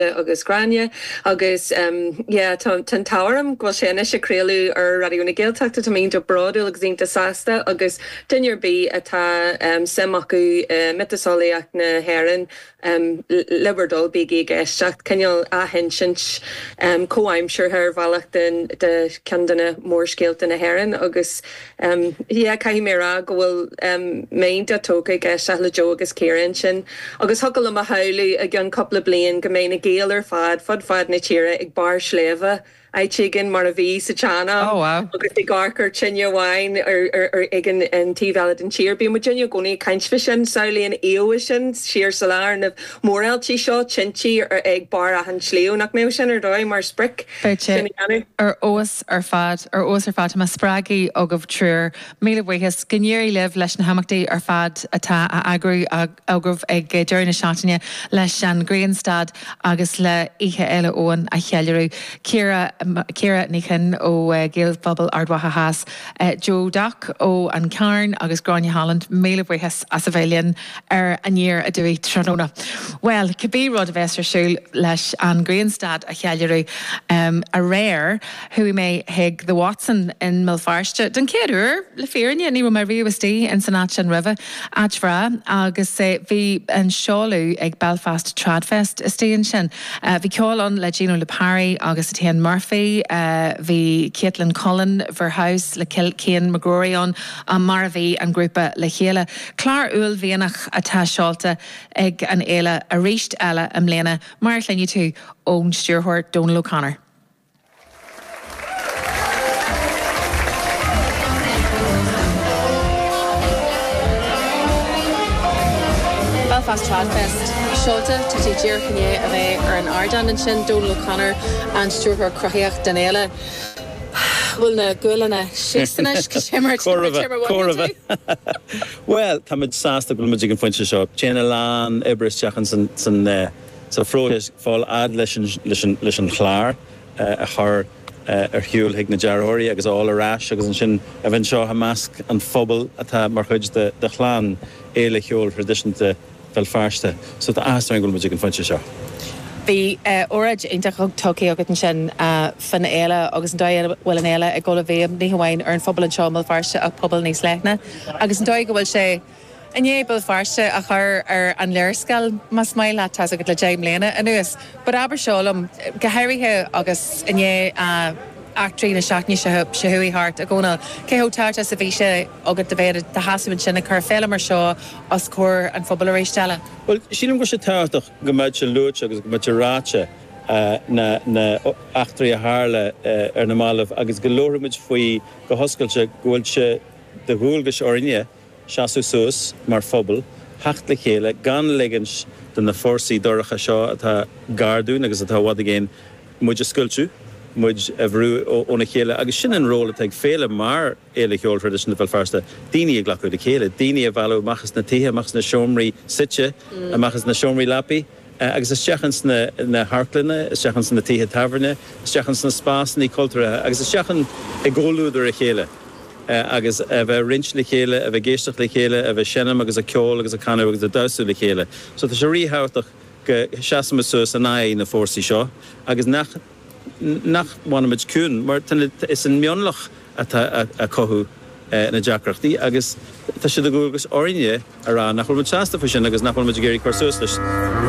agus Gráinne agus yeah tá an t-ádh orm go bhfuil sé anois ag craoladh ar Raidió na Gaeltachta, táim iontach bródúil agus iontach sásta agus duine ar bith a bhfuil suim acu i miotaseolaíocht na hÉireann le bhur dtoil bígí ag éisteacht, cineál athinsint comhaimseartha ar bhealach de ceann de na mórscéalta na hÉireann agus. Yeah, caithfidh mé a rá go bhfuil m'intinn tógtha ag éisteacht le Joe agus Ciara ansin. Agus thiocfadh liom a shamhlú, i gceann cúpla bliain, go mbeidh na Gaeil ar fad, fud fad na tíre, ag barr sléibhe, áit éigin, mar a bhí sa tsean-am, agus ag amharc ar tine amháin ag an taobh eile den tír. Bíonn muidne i gcónaí ag caint faoi sin, samhlaíonn Aoibhe sin, siar sa lá, ar na mórealtaí seo, tintí ag barr achan sliabh. Nach mbeadh sin ar dóigh, mar sprioc, sin a dhéanamh? Acht ar fad, ar fheabhas ar fad, tá mé spreagthaí agaibh triúr. Míle bhuíochas. Go n-éirí libh leis na himeachtaí ar fad atá á eagrú agaibh ag deireadh na seachtaine leis an Ghrianstad agus le Oíche Fhéile Eoin a cheiliúradh. Ciara, Ciara Ní Chinn ó Gaelphobal Ard Mhacha Theas, Joe Duck ó An Cearn agus Gráinne Holland, míle buíochas as a bheith linn. ar aniar aduaidh tráthnóna. Bhuel, cibé rud a bheas ar siúl leis an ghrianstad a cheiliúradh, aréir chuaigh mé chuig The Watson in mBéal Feirste, den chéad uair, le fírinne, ní raibh mé riamh istigh ins an áit sin roimhe, áit bhreá, agus bhí an seoladh ag Belfast Tradfest istigh ansin. Bhí ceol ann le Gino Lipari agus Etienne Murphy, bhí Caitlin Cullen, Verhouse, le Cian McGrory ann, mar a bhí an grúpa le chéile. Clár uaillmhianach atá seolta ag an fhéile arís eile i mbliana, mar a chluinfidh tú ón stiúrthóir Dónal O'Connor. Belfast Trad Fest seolta, tá sé díreach i ndiaidh a bheith ar an ardán ansin, Dónal O'Connor, an stiúrthóir cruthaíoch den fhéile. Bhuel, na gualainne síos anois, go Timor, Timor, Timor, what do you do? Bhuel, táimid sásta go bhfuil muid ag an phointe seo. Téann a lán oibre isteach ansan sa phróiseas fáil fhad leis an chlár a chur ar shiúl chuig na dearthóirí agus a fháil ar ais agus ansin a bheith anseo i measc an phobail atá mar chuid de chlann fhéile cheoil thraidisiúnta Bhéal Feirste. So tá áthas orainn go bhfuil muid ag an phointe seo. Bhí óráid iontach ag Toki agat ansin faoin fhéile agus an dóigh a bhfuil an fhéile ag dul i bhfeidhm ní hamháin ar an phobal anseo i mBéal Feirste ach pobal níos leithne agus an dóigh go bhfuil sé i ndiaidh Béal Feirste a chur ar an léarscáil más maith leat. Tá's agat le deich mbliana anuas but abair seo liom, go háirithe agus i ndiaidh eachtraí na seachtaine seo chuaigh thart i gCónall, cé chomh tábhachtach is a bhí sé agat do bheith i do sheasamh ansin ag cur féile mar seo os comhair an phobail arís eile. Bhuel, sílim go bhfuil sé tábhachtach go mbeadh sé luaite agus go mbeadh sé ráite, na heachtraí a tharla ar na mallaibh agus go labhródh muid faoi go hoscailte, go bhfuil sé de dhualgas orainne seasamh suas mar phobal, theacht le chéile, gan ligint do na fórsaí dorcha seo atá gar dúinn agus atá i bhfad i gcéin, muid a scoilteadh, muid a bhrú óna chéile agus sin an ról atá ag féile mar. Fhéile Cheoil Thraidisiúnta Bhéal Feirste, daoine a ghlacadh le chéile, daoine a mhealladh amach as na tithe, amach as na seomraí suite, amach as na seomraí leapaí agus isteach ins na hamharclanna, isteach ins na tithe tábhairne, isteach ins na spásannaí cultúrtha agus isteach i gcomhluadar a chéile agus a bheith ag roinnt le chéile, a bheith ag éisteacht le chéile, a bheith ag seinm agus ag ceol agus ag canadh agus ag damhsa le chéile. So tá sé ríthábhachtach go seasaimid suas in aghaidh na fórsaí seo agus nach. nach bhfanaimid ciúin, mar is é an mionlach atá ag cothú na deacrachtaí agus tá sé de dhualgas orainne a rá nach bhfuilimid sásta faoi sin agus nach bhfuilimid ag iarraidh cur suas leis.